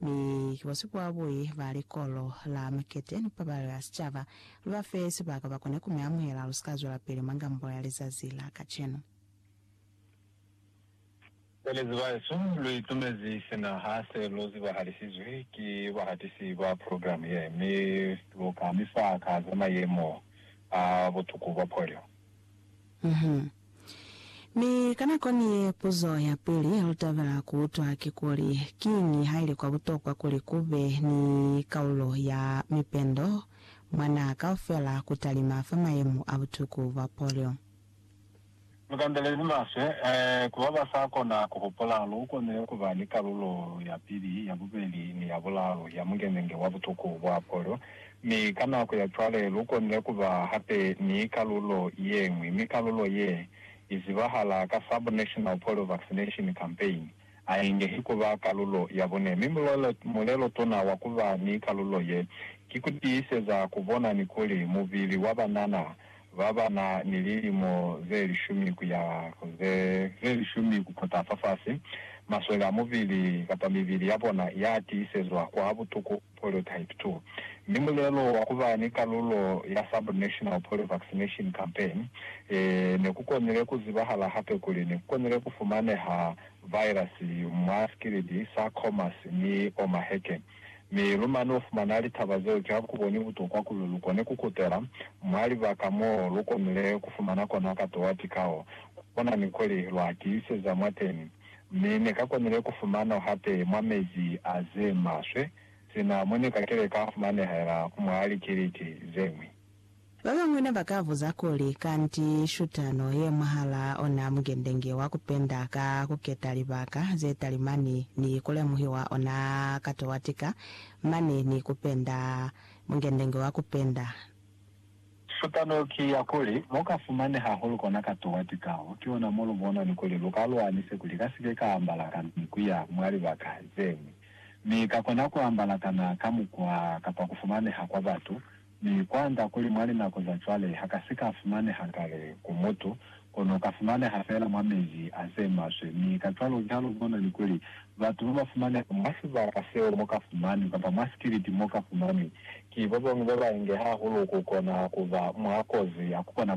Mi ki bo sibuabui ba likolo la mukete ni pabalo ya sicaba, lu ba fe sibaka ba kone ku mi amuhela. Lu si ka zwelapili mwa ngambo ya lizazi la kacenu. Belezi bahesu, lu itumezi sina ha se lu zibahalisize ki bahatisi ba progilamu ye, mi lu ka mi fa ka za mayemo a butuku bwa polio. Uhum. Mi ka nako ni ye, puzo ya pili ya lu tabela ku utwa ki kuli, Kiñi ha ili kwa butokwa kuli ku be ni kaulo ya mipendo mwa naha kaufela ku talima fa mayemo a butuku bwa polio? Lu kandelezi maswe, ee, ku ba ba sa kona ku hupula. Lu konile ku ba ni kalulo ya pili, ya bubeli, ni ya bulaalu ya mungenenge wa butuku bwa polio. Mi ka nako ya cwale lu konile ku ba hape ni kalulo ye ñwi, mi kalulo ye i zibahala ka Sub-National Polio Vaccination Campaign a ingehi ku ba kalulo ya bune. Mi mulelo, mulelo tuna wa ku ba ni kalulo ye, ki ku tiiseza ku bona ni kuli mubili wa banana ba ba na ni lilimo ze lishumi ku ya ku ze, ze lishumi ku kota fafasi, maswele a mubili kapa mibili ya bona ya tiisezwa kwa butuku. Polytype two, mi mulelo wa kuba ni kalulo ya sub national polio vaccination campaign e ne ku konile ku zibahala hape kuli ne ku konile ku fumaneha virus mwa sikilidi sa Khomas ni Omaheke. Mi lu mane u fumana litaba zeo ki ha ku boni butokwa kuli lu kone ku kutela mwa libaka mo lu konile ku fumana kona katowa tikao ku bona ni kuli lwa tiiseza mwateni. mi ne ka konile ku fumano hape mwa mezi a ze maswe sina mo ne ka kile ka fumanehela ku mwa likiliti ze ñwi. Ba bañwi ne ba ka buza kuli, Kanti shutano ye mwahal'a ona mugende nge wa ku penda ka ku keta libaka ze talimani ni ku lemuhiwa ona katowatika mane ni ku penda? Mugende nge wa ku penda. Supano ki ya kuli, lu ka fumani hahulu kona ka tuwa tikaho, ki ona mo lu bona ni kuli lu ka lwanise kuli ka si ke ka ambala ka ni ku ya mwa libaka ze ñwi, mi ka kona ku ambala kana ka mukwa kapa ku fumaneha kwa batu, mi kwanda kuli mwa linako za cwale ha ka si ka fumaneha kale ku mutu, kono ka fumaneha fela mwa mezi a ze maswe, mi kacwalo ki ha lu bona ni kuli batu ba ba fumaneha mwa sibaka seo mo ka fumani, kapa mwa sikiliti mo ka fumani, Ki bobañwi babainge hahulu kukona kuba mwa kozi ya kubona